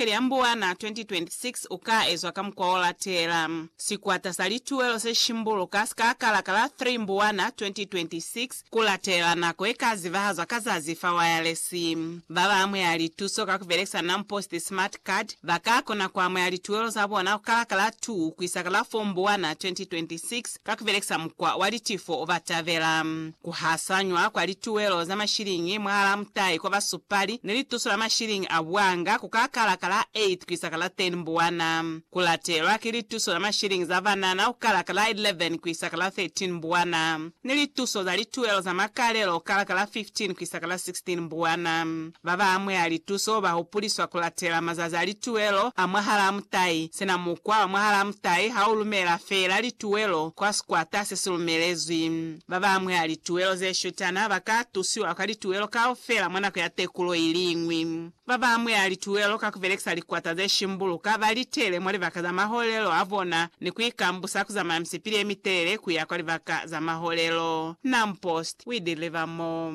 Kele ya Mbuwana 2026 u ka ezwa ka mukwa o latela. Sikwata sa lituwelo se shimbuluka si ka kala ka la 3 Mbuwana 2026 ku latelela nako ye ka zibahazwa ka zazi fa wayalesi. Ba ba amuhela lituso ka ku belekisa NamPost Smart Card ba ka kona ku amuhela lituwelo za bona ku kala ka la 2 ku isa ka la 4 Mbuwana 2026. Ka ku belekisa mukwa wa litifo, ba tabela ku hasanywa kwa lituelo za mashiliñi mwahalaa mutai kwa basupali ni lituso la mashiliñi a buanga ku ka kala ka la 8 ku isa ka la 10 mbuwana, ku latelwa ki lituso za mashiliñi za banana ku kala ka la 11 ku isa ka la 13 mbuwana, ni lituso za lituelo za makalelo ku kala ka la 15 ku isa ka la 16 mbuwana. Ba ba amuhela lituso ba hupuliswa ku latela mazazi a lituwelo a mwahalaa mutai. Sina mukwa wa mwahalaa mutai ha u lumela feela lituwelo kwa sikwata se si lumelezwi. Ba ba amuhela lituwelo ze shutana ba ka tusiwa kwa lituwelo kaufela mwa nako ya tekulo i li ñwi. Ba ba amuhela lituwelo ka ku belekisa likwata ze shimbuluka ba li tele mwa libaka za maholelo a bona ni ku ikambusa ku zamaya misipili ye mitelele ku ya kwa libaka za maholelo. Nampost, We Deliver More.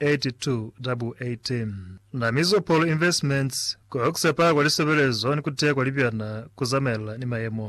8218 Na Mizopolo Investments ku Oxepa kwa Lisebelezo ni ku Teya kwa Libyana ku Zamaelana ni Mayemo.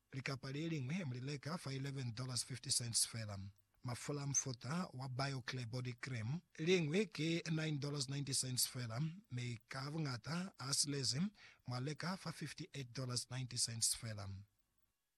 Likapa le liñwi mu li leka fa $11.50 fela. Mafula a mufuta wa BioClear Body Cream, liñwi ki $9.90 fela, mi ka buñata a silezi mwa leka fa $58.90 fela.